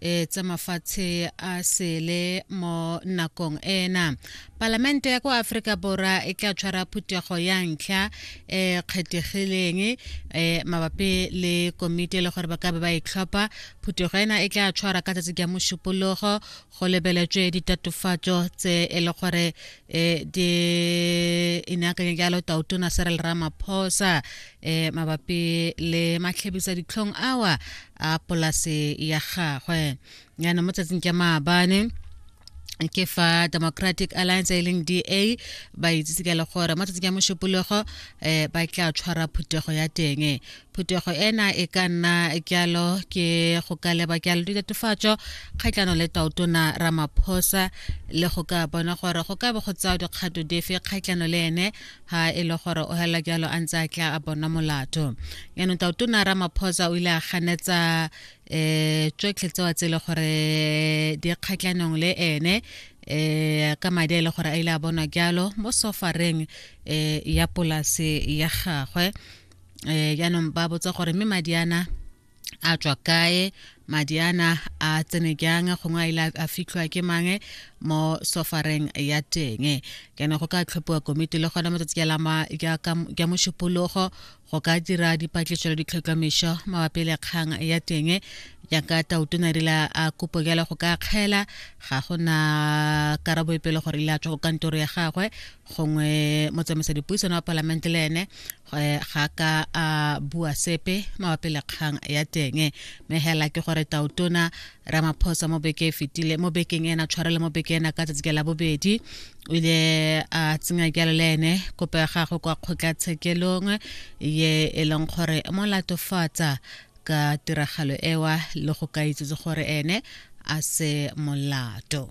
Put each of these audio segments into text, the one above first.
e tsa mafatshe a sele mo nakong ena palamente ya kwa aforika borwa e tla tshwara phuthego ya ntlha e kgethegileng e mabapi le komiti le gore ba ka be ba itlhopha phuthego ena e tla tshwara ka tsatsi ka mošupologo go lebeletswe ditatofatso tse e le gore e di inakanye jalo tautona serel ramaphosa e mabapi le matlhebisa ditlhong awa a polase ya gagwe yana mo tsatsing ke maabane ke fa democratic alliance e leng da ba itsise ka le gore mo tsatsing ya mošupologo um eh, ba tla tshwara phuthego ya teng phuthego ena e ka nna kyalo ke go ka leba kyalo ditatofatso kgatlhano le taotona ramaphosa le go ka bona gore go ka be go tsaya dikgato dife kgatlhano le ene ha e le gore o hela jalo a ntse a tla a bona molato yaanong taotona ramaphosa o ile a ganetsa um tsotlhe tsewa tse e le gore di kgatlhanong le ene um ka madi a e le gore a ile a bonwa jalo mo sofareng um ya polase ya gagwe um jaanong ba botsa gore mme madi ana a tswa kae madi ana a tsene jang gongwe a ile a fitlhwa ke mange mo sofareng ya teng kana go ka tlhophiwa komiti le gona matsatsi ja mošupologo go ka dira dipatlisiso le ditlhotlhomišo mabapi le kgang ya teng jaaka tautona rile a kopo jalo go ka kgela ga go na karabo e pele gore ile a tswa go kantoro ya gagwe gongwe motsamaisa dipuisano wa palamente le ene Eh, ga ka a bua sepe mabapi le kgang ya teng mme hela ke gore tautona ramaphosa mo beke e fetile mo bekeng ena tshwarele mo beke ena ka tsatsi ke la bobedi o ile a tsenya jalo le ene kopo ya gagwe kwa kgotlatshekelong ye e leng gore mo latofatsa ka tiragalo ewa le go ka itsetse gore ene a se molato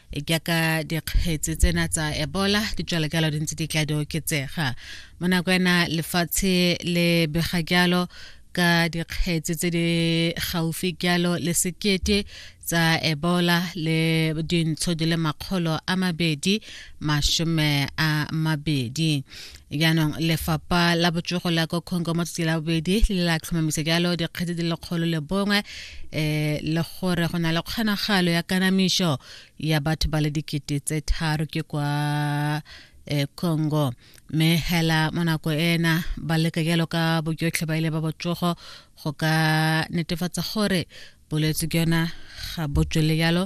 jaaka dikgetse tsena tsa ebola di tswela jalo di ntse di tla di oketsega mo nako ena lefatshe le bega jalo ka dikgetse tse di gaufi jalo le sekete tsa ebola le dintsho di le makgolo a mabedi masome a mabedi jaanong lefapha la botsogo la ko congo mo tsatsi la bobedi le la tlhomamisa jalo dikgetse di lekgolo le bongwe um le gore go na le kgonagalo ya kanamišo ya batho ba le dikete tse tharo ke kwa um congo mme hela mo nako ena ba leka jalo ka bojotlhe ba ile ba botsogo go ka netefatsa gore bolwetse ke yona ga bo tswele jalo